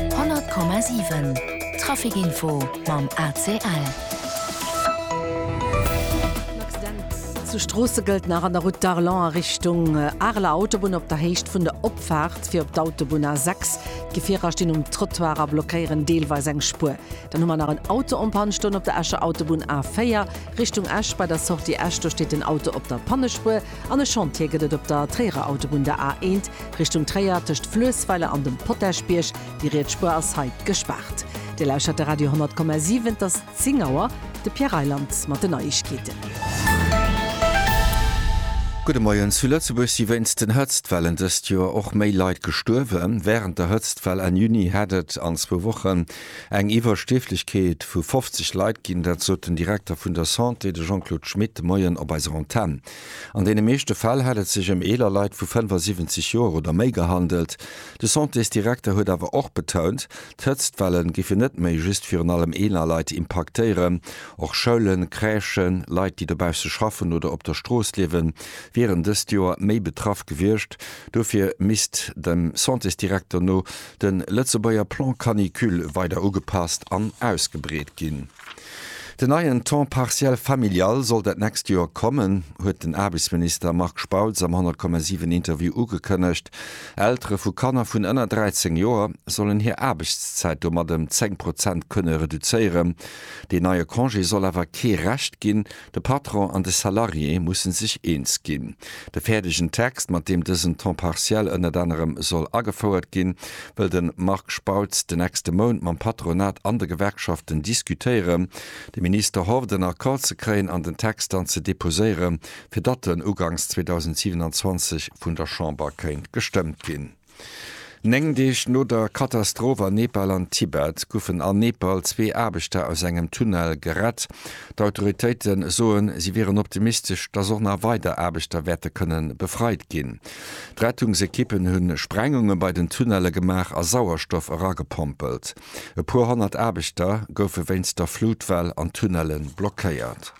100,7 Trafic Info mam ACL. En Accident zu Stroossegueltnach an der Route d'Arlon a Richtung Areler Autobunn op der Héicht vun der Opfaart fir op d'Autobunn A6. D'Gefierer stinn um Trottoir a blockéieren deelweis eng Spuer. Dann hu mer nach en Auto en Panne stoen op der Escher Autobunn A4 Richtung Esch. Bei der Sortie Esch do steet den Auto op der Pannespuer. An e Chantier gëtt et op der Tréierer Autobunn, der A 1, Richtung Tréier, tëscht Fluessweiler an dem Potagebierg. Déi riets Spuer ass hei gespaart. Dir lauschtert de Radio 10,7. Et ass 10 Auer. De Pierre Reyland mat den Neiegkeeten. Gudde Moien. Zu Lëtzebuerg si wéinst den Hëtztwellen dëst Joer och méi Leit gestuerwen. Wärend der Hëtztwell Enn Juni hätt et an zwou Wochen Eng Iwwerstierflechkeet vu 50 Leit ginn, dat sot den Direkter vun der Santé, de Jean-Claude Schmit, de Moien op eiser Antenn. An deene meeschte Fäll hätt et sech ëm eeler Leit vu 75 Joer oder méi gehandelt. De Santésdirekter huet awer och betount, d'Hëtztwelle géifen net méi just virun allem eeler Leit impaktéieren. Och Schoulen, Crèchen, Leit, déi dobausse schaffen oder op der Strooss liewen, wieren dëst Joer méi betraff gewiescht. Dofir misst dem Santésdirekter no De Lëtzebuerger Plan Canicule weider ugepasst an ausgebreet ginn. Den neien Temps partiel familial soll dat nächst Joer kommen, huet den Aarbechtsminister Marc Spautz am 10,7 Interview ugekënnegt. Eltere vu Kanner vun ënner 13 Joer sollen hir Aarbechtszäit domat ëm 10 Prozent kënne reduzéieren. Deen neie Congé soll awer kee Recht ginn, De Patron an de Salarié musse sech eens ginn. De fäerdegen Text, mat deem dësen Temps partiel ënnert anerem soll agefouert ginn, wëll de Marc Spautz de nächste Mount mam Patronat an de Gewerkschaften diskutéieren. De Minister hofft, en Accord ze kréien an den Text dann ze deposéieren, fir datt en ugangs 2027 vun der Chamber kéint gestëmmt ginn. Néng Deeg no der Katastroph an Nepal an Tibet goufen an Nepal zwee Aarbechter aus engem Tunnel gerett. D'Autoritéite soen, si wieren optimistesch, dass och nach weider Aarbechter wäerte kënne befreit ginn. D'Rettungsekippen hu Sprengunge bei den Tunnelle gemaach a Sauerstoff eragepompelt. E puer honnert Aarbechter goufe wéinst der Flutwell an Tunnelle blockéiert.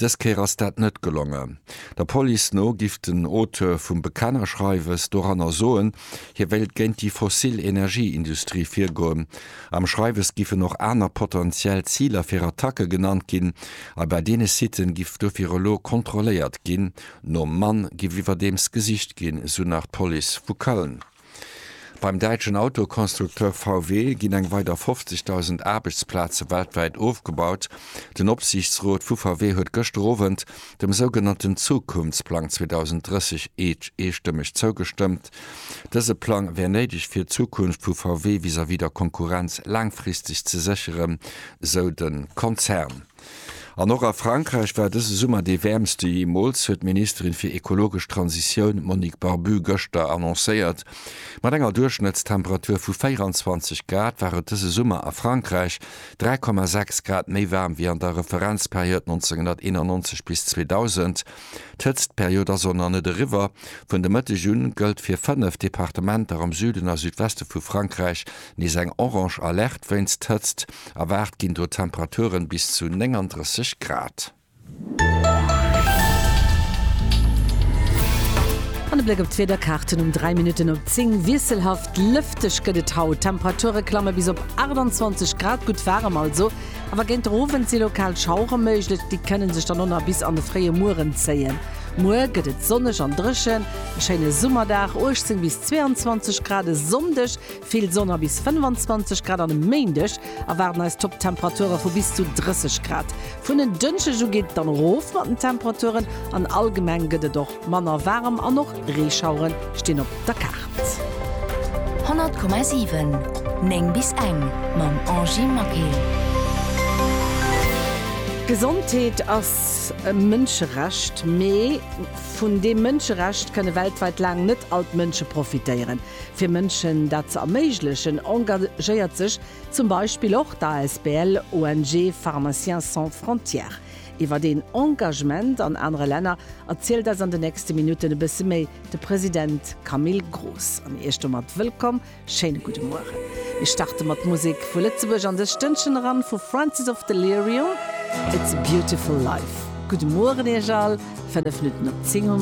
Dës Kéier ass dat net gelongen. Der Police no giff den Auteur vum Bekennerschreiwes doranner soen, hie wéilt géint déi fossil Energieindustrie virgoen. Am Schreiwes giffen och aner potentiell Ziler fir Attacke genannt ginn a bei deene Siten giff dofir elo kontrolléiert ginn. Nom Mann giff iwwerdeems gesicht ginn, esou nach d'Police vu Köln. Beim däitschen Autoconstructeur VW ginn eng weider 50.000 Aarbechtsplaze weltwäit ofgebaut. Den Opsiichtsrot vu VW huet gëschter Owend dem sougenannten Zukunftsplang 2030 eestëmmeg zougestëmmt. Dëse Plang wär néideg fir d'Zukunft vu VW vis-à-vis der Konkurrenz laangfristeg ze sécheren, sou de Konzern. An och a Frankräich war dëse Summer dee wäermste jeemools, huet d'Ministerin fir ekologesch Transitioun Monique Barbu gëschter annoncéiert. Mat enger Duerchschnëttstemperatur vu 24 Grad war et dëse Summer a Frankräich 3,6 Grad méi waarm wéi an der Referenzperiod 1991 bis 2000. D'Hëtztperiod ass och nach net eriwwer. Vun de Mëtteg un gëllt fir fënnef Departementer am Süden a Südweste vu Frankräich nees eng orange Alerte wéinst Hëtzt. Erwaart ginn do Temperaturen bis zu 39 Grad. An e Bléck op d'Wiederkaarten um 3 Minutten op 10. Wiesselhaft lëfteg gëtt et haut. D'Temperature klamme bis op 28 Grad, gutt waarem also. Awer géint der Owend si lokal Schauere méiglech, déi kënne sech dann och nach bis an de fréie Mueren zéien. Muer gëtt et sonneg an dréchen, e schéine Summerdag, 18 bis 22 Grad e Sonndeg. Vill Sonn a bis 25 Grad an e Méindeg erwaarden eis Topptemperature vu bis zu 30 Grad. Vun en Dënschdeg u geet et dann erof mat den Temperaturen an allgemeng gëtt et och manner waarem an och Reeschauere stinn op der Kaart. 100,7 9 bis eng mam Angy Maquet. Gesondheet ass e Mënscherecht, mee vun deem Mënscherecht kënne weltwäit laang net all d'Mënsche profitéieren. Fir Mënschen dat ze erméiglechen, engagéiert sech zum Beispill och d'ASBL ONG Pharmaciens Sans Frontières. Iwwert een Engagement an anere Länner erzielt eis an de nächste Minutten e bësse méi de President Camille Groos. An Iech domat wëllkomm, schéine gudde Mueren. Mir starte mat Musek vu Lëtzebuerg an dëst Stënnchen eran, vu Francis of Delirium, It's a Beautiful Life. Gudde Mueren Iech all, 5 Minutten op 10 hu mer.